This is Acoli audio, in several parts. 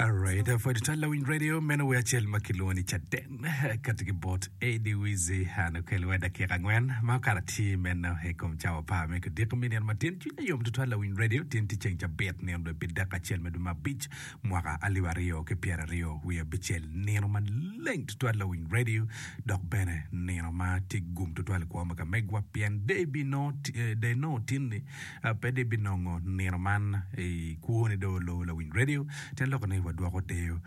Alright, uh, for the Tala Wing Radio, meno we acel ma kilwongo ni Caden kati ki bot Eddie Wizzy an okel we dakika angwen ma okato atir meno i kom cawa par me kudiko mi nino matin cwiny ayom tutwal la Wing Radio tin ti ceng cabit nino dwe pi dakika acel me dwe ma abic mwaka alip aryo ki pyera aryo wiye abicel nino maleng tutwal la Wing Radio dok bene nino ma ti gum tutwal i kwo ma kamegwa pien day bi no eh, day no tin ni pe dong ibinongo nino man i kwoni dong olubo lawiny redio. Te lok ni wadwoko deyo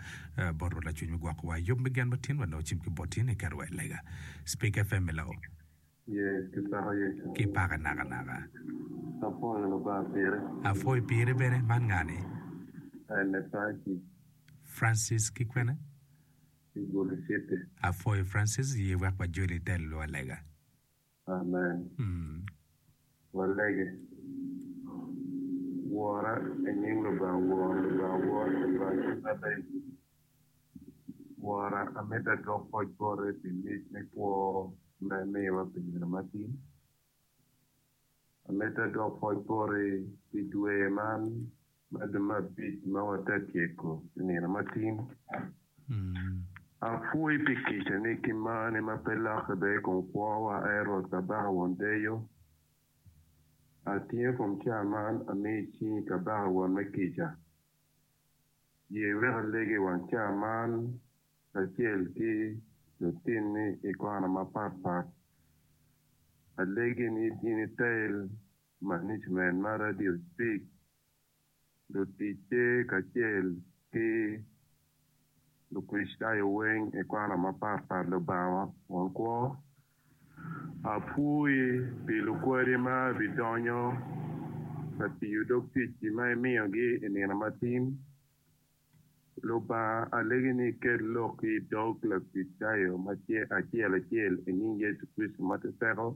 bot Rwot Lacwiny me gwokowa i yub me gen ma tin wa nongo cim ki bot in iketo wa i lega. Speak FM i Lao. Yee, kipako Yecu. Kipake nakanaka. Apwoyo Lubanga pire. Apwoyo pire bene. Man nga ni? Ene Francis. Francis ki kwene? Ki Gulu City. Apwoyo Francis, ye wek wajoli ite luwa lega. Amen. Walege. Wora i nying Lubanga Woro, Lubanga Woro, Lubanga Cwiny Maleng. Wora, amito adwok poc bote pi mic me kwo ma imiyowa pi nino matin. Amito adwok poc boti pi dwe man. Magi me abic ma wate tyeko i nino matin, Apwoyi pi kicani ki marni ma pe lokke bene i kom kwowa, Ai Rwot Kabaka Won Deyo. Atingo kom cawa man amiyo i cingi, Kabaka Won me kica. Ye wek alegi i wang cawa man kacel ki lutinni i kona mapatpat. Alegi ni in itel Management ma Radio Speak, luticce kacel ki Lukricitayo weng i kona mapat pat Lubanga won kwo, apwoyi pi lukwadi ma bidonyo ka tiyo dog ticci ma imiyogi i nino matin. Lubanga alegi ni iket lokki i dog Lakricitayo acel acel i nying Yecu Kricito ma te teko.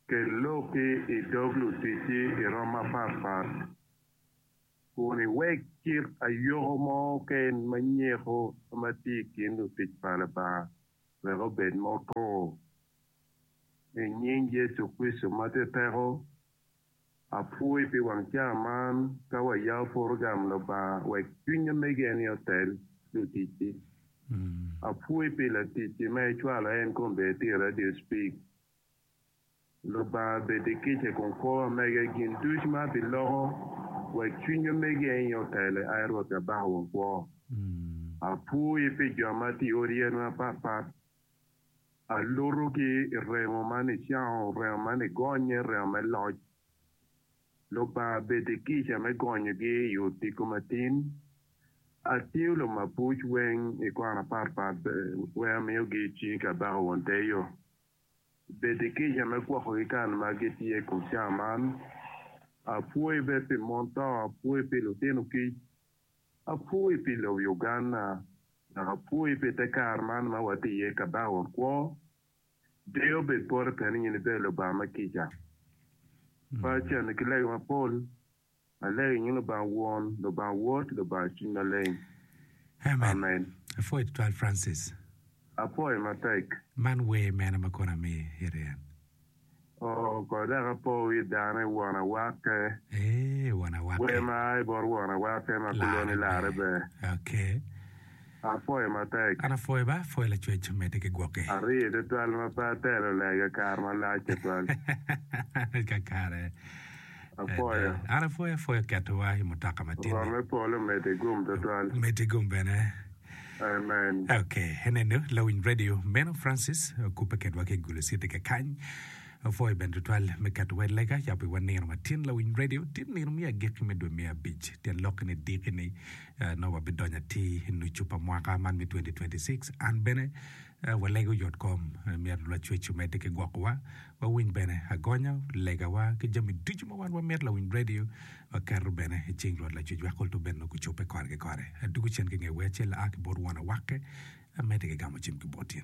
Kel loki i dog luticci i rom mapat pat kun iwek kit ayoko mo keken ma nyeko ma tye i kin lutic pa Lubanga wek obed ma otur. I nying Yecu Kricito ma tye teko. Apwoyi pi wang ca man ka wayao porogram Lubanga wek cwiny omege-ni otel luticci. Apwoyi pi laticci ma icwalo en kong bed ti i radio Speak. Lubanga bed i kica kun kor omege gin duc ma abi loko wek cwiny omege-ni otele ai Rwot Kabaka wa kwo. Apwoyi pi jo ma ti i odi yen mapat pat Alutogi i rengo ma nicango, rengo ma nigonye, rengo me loc. Lubanga bed i kica me gonyogi i odiko matin. Atingo lumabuc weng i kwan aparpar weng amiyogi i cingi kabaka won te yo. Bed i kica me gwokogi kan ma gitye i kom cawa man. Apwoyi bed pi mon to, apwoyi pi lutino kic, Apwoyi pi lobo Uganda dok apwoyi pi te kare man ma watye iye ka bao kwo. Deyo bed pore pien in ibedo Lubanga ma kica. Pacha ni ki lega mapol alego i nying Lubanga Won, Lubanga Wod, Lubanga Cwiny Maleng. Amen. Apwoyi tutwal Francis. Apwoyi matek. Man wer mene ma kono amir en? Oh, kor dek apo wi dano i won awakke. Eeh, won awakke. Wer ma a i bot won awakke ma kuloni larre ber. Okay. Apwoyo matek. An apwoyo ba, apwoyo lacwec medde ki gwokke. Aryee tutwal ma pe atelo lega kare malac tutwal. Kakare. Apwoyo. Ada, an apwoyo apwoyo ketowa i mutoka ma tin-ni. Rwot me polo omedde i gum twatwal. Omedde i gum bene. Amen. Ok, enenu lawiny radio meno Francis okubbe kedwa ki i Gulu City kakany. Apwoyo bene twatwal me ketowa i lega yabo iwa nino ma tin lawiny radio. Tin nino me agikki me dwe me abic, tyen lok-ki ni diki-ni, ah, nongo wabidonyo atir i nucu pa mwaka man me 2026. An bene Ee, walego yotkom. Myero Lwacwec omedde ki gwokowa. Wawiny bene agonya, legawa, ki jami ducu ma wan wamito. Lawinyb redio waketo bene i cing Rwot Lacwecwa kul to bed nongo gucobbe kore ki kore. Adwogo cen ki nge wer acel aa ki bot won awakke, amedde ki gamo cim ki bot in.